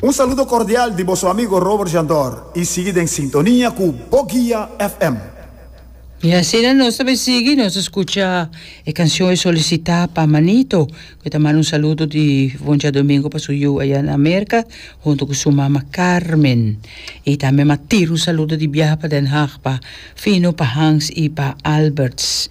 Un saludo cordial di boso amigo Robert Jandor y sigui den sintonia cu Bo Guia FM. Y asina nos ta bai sigui, nos scucha e cancion e solicita pa Manito, cu ta manda un saludo di Voncha Domingo pa su yu aya na Merca, hunto cu su mama Carmen. Y tambe ma tira un saludo di biaha pa Den Haag pa Fino, pa Hans y pa Alberts.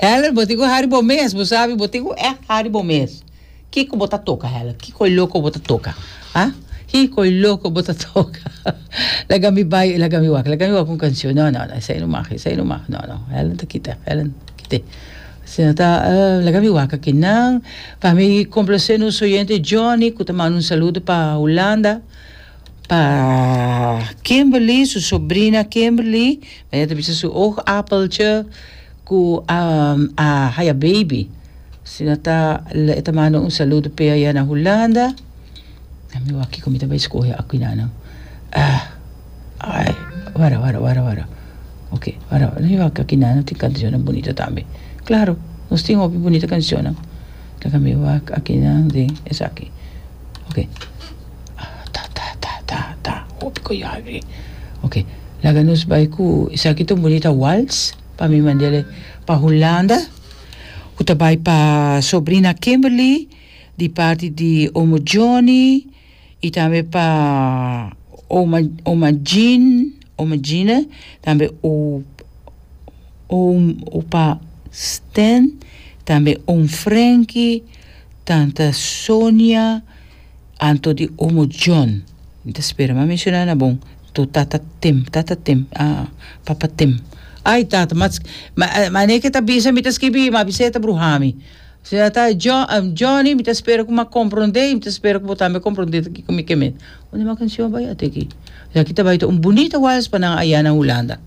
Heller bo tin cu hari bo mes, bo sabi bo tin cu echt hari bo mes. Kico bo ta toca Heller? Kico e loco bo ta toca? Ah? Kico e loco bo ta toca? Laga mi bay, laga mi wak, laga mi wak un cancion. No, no, no, esai no mag, esai no mag. No, no, Heller no ta kita, Heller no ta kita. Si no ta, uh, laga mi wak aki. Nan, pa mi complace nos oyente Johnny cu ta manda un saludo pa Hulanda. Pa Kimberly, su sobrina Kimberly, mira ta bisa su oogappeltje cu um, a haya baby. Si no ta, le ta manda un saludo pe allá na Hulanda. A mi wak kiko mi ta bay scoge aquinano. Ah, ay, wara, wara, wara, wara. Ok, wara, wara. Mi wak aquinano tin cancionnan bunito tambe. Claro, nos tin hopi bunito cancionnan. Taka mi wak aquinano tin esaki. Ok. Ta ta ta ta ta hopi koyalri ok laga nos bai ku esaki ta un bonita wals pa mi mandele pa Hulanda ku ta bai pa sobrina Kimberly di parti di omo Johnny i tambe pa oma oma Jean oma Gina tambe opa Stan tambe oom Frenki tanta Sonia Anto di omo John. Mi ta spera m'a menshona na bon to tata Tim, tata Tim, ah, papa Tim. Ai tata, ma, ma, ma n'e ke ta bisa mi ta skibi, m'a bisa e ta bruha mi. Si a ta John, Johnny, mi ta spera ku m'a komprondé, mi ta spera ku bo tambe komprondé ta kiko mi ke mete. Unda e m'a kanshon bai ate aki? Aki ta bai ta un bunita wals pa nan ayana Hulanda.